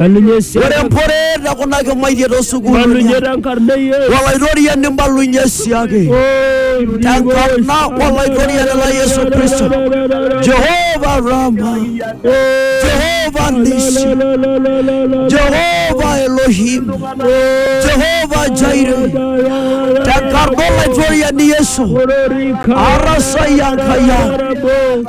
Na ninye esiana. Ore emporeet e kuna kimaitie too sukuulini ang. Na ninye te nkarna e Yesu. Olaitoriani mbalunye siake. Te nkarna Olaitoriani lang Yesu Kristo. Jehovah Rama. Jehovah Nisi. Jehovah Elohim. Jehovah Jireh. Te nkarna Olaitoriani Yesu. Arasai Enkai ang.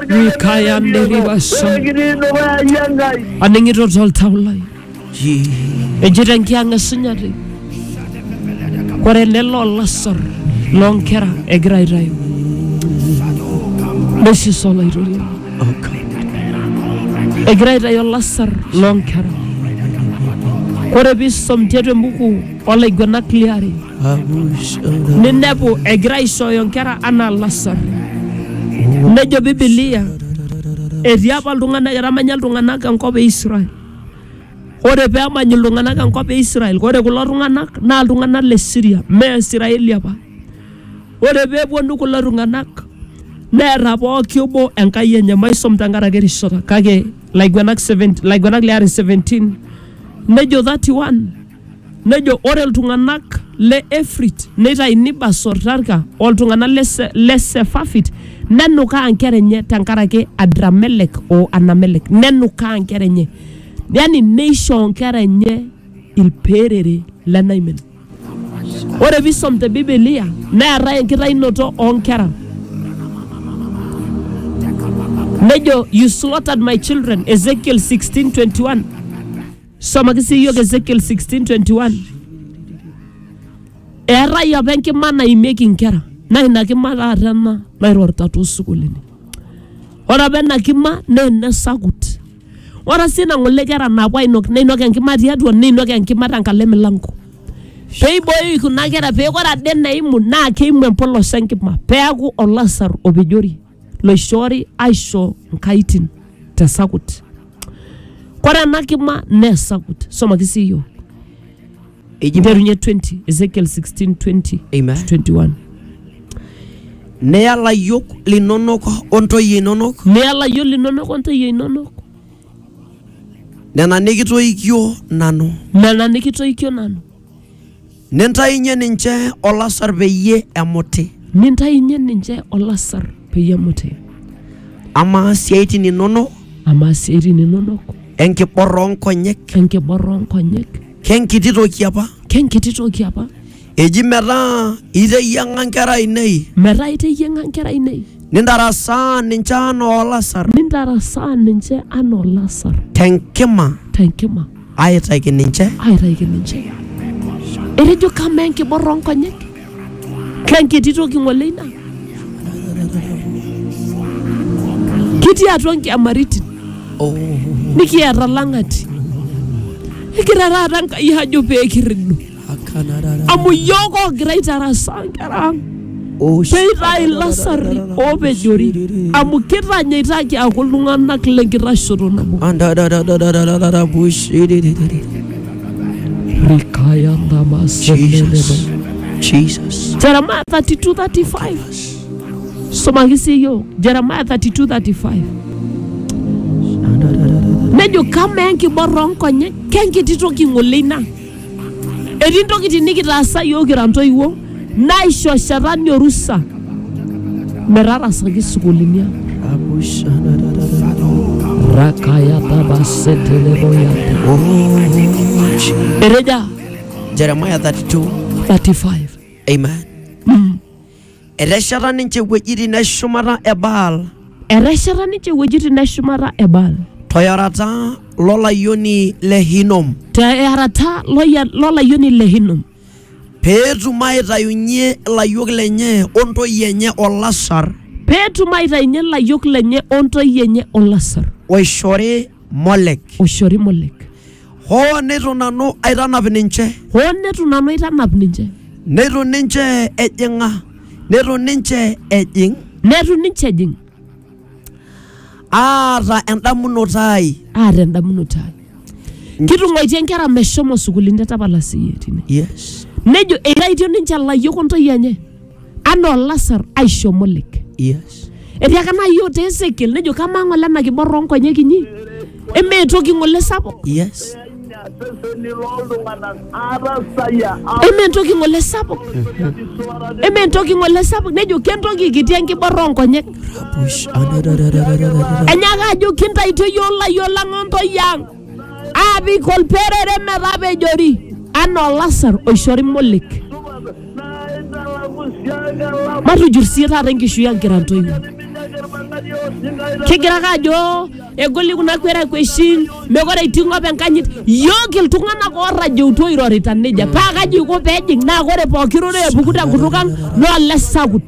Mikaya Nderiba Sha. Aning'ito toltau lai. Ejito enkiang' esunyati. Ore ele loo lasar loo nkera egira aitayu. Nesis olaitoriani. Egira aitayu olasar loo nkera. Ore piisom tiatua embuku olaiguanak liare ninepu egira aishooyo nkera anaa lasar. Nejo Bibilia etii apa iltung'anak etamanya iltung'anak enkop e Israel. Ore pee emany iltung'anak enkop e Israel, ore kulo tung'anak naa iltung'anak le Syria, mee Israeli apa. Ore pee epuonu kulo tung'anak neeta pooki obo enkai enye, maisom tenkaraki erishata kake Laiguenak 17, Laiguenak le are 17 nejo 31 Nejo ore iltung'anak le Efrit neitaini Basor Tarka o iltung'anak le Se- le Sefafit nenukaa nkera enye tenkaraki Adramelek o Anamelek nenukaa nkera enye yani neishoo nkera enye ilperere lenaimin. Ore pisom te Bibilia neetae enkitainoto oo nkera nejo you slaughtered my children Ezekiel 16:21 Somaki sii iyiok Ezekiel 16:21. Eetae apa enkima naimieki inkera naa ina kima taata ena nairorita toosukuulini. Ore apa ena kima naa ene sakut. Ore sii ina ng'ole kera naapuo ainok neinok enkima tiatua neinok enkima tenkalo emilanko. Pee eiboyoo kuna kera pee ore ade eneimu naa keimu empolos enkima peeku olasar opejori. loishoori aisho nkaitin te sakut. Kore ena kima nee sakut. Somaki sii iyiok. Eji Nterunye 20, Ezekiel 16, 20 Amen. to 21. neya layiok linonok o ntoyie inonok Neya layiok linonok o ntoyie inonok nena nikitoikio nanu. nena nikitoikio nanu. Nintainye ninche olasar peyie emuti. Nintainye ninche olasar peyie emuti. Amaa siaitin inono. Amaa siaitin inono. Enkibor oo nkonyek. Enkibor oo nkonyek. Kenkiti toki apa. Kenkiti toki apa. Eji metaa iteyiang'a nkera ainei. Metaa iteyiang'a nkera ainei. Nintarasaa ninche anaa olasar. Nintarasaa ninche anaa olasar. Tenkima. Tenkima. Aaitaki ninche. Aaitaki ninche. Etejo kamaa enkibor oo nkonyek? Kenkiti toki ng'ole ina? Kitii atua nkiamaritin oh. nikiata lang'ati. Egira taata Enkai ajo pee kirridu. amu iyiook oogira aitarasaa nkera ang peitae ilasarri oopejori amu kitanyaitaki aaku iltung'anak lenkitashoto nabo rikaya Jesus. Jesus. Jeremiah 32 35. Somaki sii iyiook Jeremiah 32 35. Nejo kamaa enkiborra oonkonyek kenkiti toki ng'ole ina Etii ntokitin nikitaasa iyiook kira ntoiwuo naishoshetani orusa metarasaki sukuulini ang. Eteja Jeremiah 32. 35. Amen. Etesheta ninche iwuejitin e shumata e Baal Etesheta ninche iwuejitin neshumata e Baal toyorata lolayioni le Hinom te earata loya- lolayioni le Hinom peetum aitayunyie ilayiok lenye o ntoyie enye olasar peetum aitayunye ilayiok lenye o ntoyie enye olasar oishori Molek. oishori Molek. hoo neitu nanu aitanap ninche hoo neitu nanu aitanap ninche neitu ninche ejing'a neitu ninche ejing neitu ninche ejing aata endamunoto ai aata endamunoto ai kitung'uaitie nkera meshomo sukuulini te tapala siyie tine yes nejo eitaitie ninche ilayiok o ntoyie enye anaa olasar aisho molek Yes. etiaka naa yiok te esekiel nejo kamaa ng'ole ena kibor oonkonyek inyi emee toki ng'ole sapuk Yes. seseni loltung'anak atasayia emee toki ng'ole sapuk emee toki ng'ole sapuk nejo kentoki kiti enkibor oonkonyek Push. Anadadadadadada. enyaaka ajo kintaitio yiok layiok lang ontoi ang aapik olperere metapejori anaa olasar oishori molek. Matujur sii taata enkishui ang kira ntoiwuo. Kigira ake ajo egoli kuna kwerekweshin, mekure etii ng'op enkanyit. Yook iltung'anak oorrajeutua oirorita nejia. Paa kaji iko pee ejing naa ore pooki rorei epuku tenkutuk ang naa olesakut.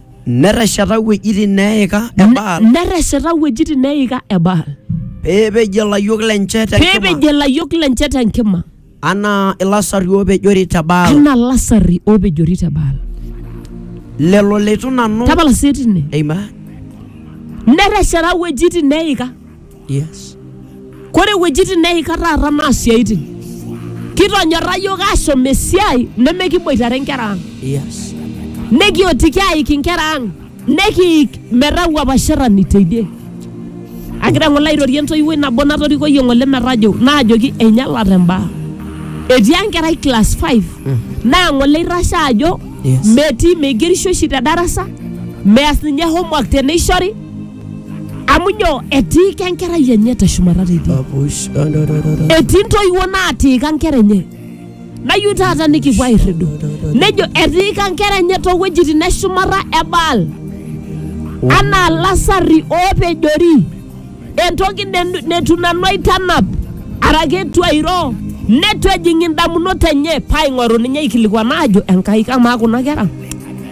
Netesheta wuejitin neeika e Baal netesheta wuejitin neeika e Baal pee epej ilayiok lenche te nkima peepejie ilayiok lenche te nkima anaa ilasari oopejori te Baal anaa lasari oopejori te Baal. lelo leitu nanu Tapala sii tine. Amen. Netesheta wuejitin neeika Yes. Kore iwuejitin neika taata naa siaitin. Kitonyorra yiok ashom esiai nemekiboitare nkera ang. Yes. Nekiotiki aik inkera ang. Nekiik metaa wuapasherani teidie. Agira ng'ole airorie entoiwuoi nabo natorikoyie ng'ole metajo naajoki einyalate mbaa. Etii enkerai class five naa ng'ole eitashe ajo Yes. metii meigerisho oshi te darasa, meas ninye homework teneishori amu nyoo etiika enkerai enye teshumata teidie Apush. etii ntoiwuo naatiika nkera enye nayieu taata nikipuo airridu nejo etiika nkera enye toowuejitin eshumata e baal anaa lasarri oopejori entoki ne- netu nanu aitanap araki etu airo netu ejing indamunot enye paaing'oru ninye aikilikuan aajo enkai kamaa kuna kera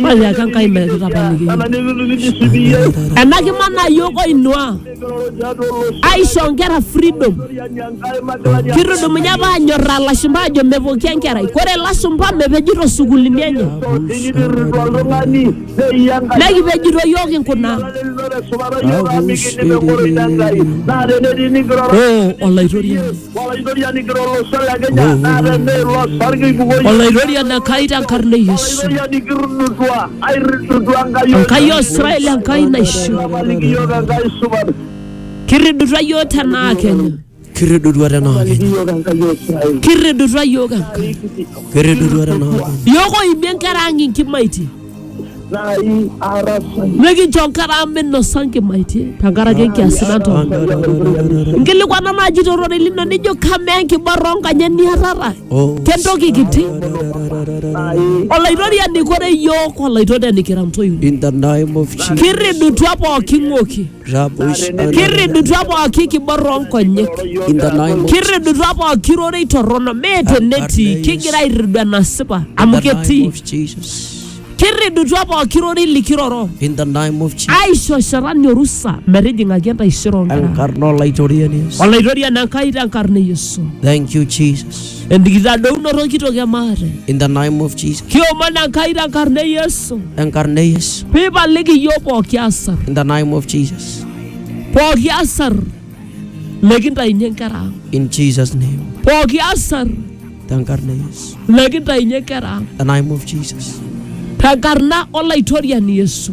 Maya ake Enkai metapaliki yiok. Ena kima naa yiok oinua aisho nkera freedom. Kitudumunye apa anyorraa lashumpa aajo mepoki enkerai. Kore lashumpa mepejito sukuulini enye. Nekipejito yiok kinkuna. Oo Olaitoriani. Olaitoriani Enkai tenkarna e Yesu. Enkai o Israel Enkai naisho. Kirridutua iyiook tenaa Kenya. Kirridutua tenaa Kenya. Kirridutua iyiook Enkai. Kirridutua tenaa Kenya. Iyiook oimie nkera ang' inkimaitie. nai ara sai nikincho enkata amu minosa nkimaitie tenkaraki enkiasi natoono nkilikuana naaji tororei lino nijo kamaa enkiborra onkanyek niatata kentoki kiti nai olaitoriani kore yiok olaitoriani kira ntoiwuo In the name of Jesus. kirridutua pooki ng'oki Rabosh kirridutua pooki kiborra oonkonyek in the name of kirridutua pooki rorei torrono mee tenetii kigira airridu enasipa amu in the name ketii of Jesus. kirridutua pooki rorei likiroro In the name of Jesus. aisho shetani orusa metijing'aki entaisere oonkera Enkarna olaitoriani Yesu. olaitoriani enkai tenkarna e yesu Thank you Jesus. enkitadounoto kitok e maate in the name of Jesus. kiomon enkai tenkarna e yesu Enkarna e Yesu. piipaliki iyiook pooki asar In the name of Jesus. pooki asar lekintainyie nkera ang In Jesus' name. pooki asar Enkarna e Yesu. lekintainyie nkera ang The name of Jesus. tenkarna olaitoriani yesu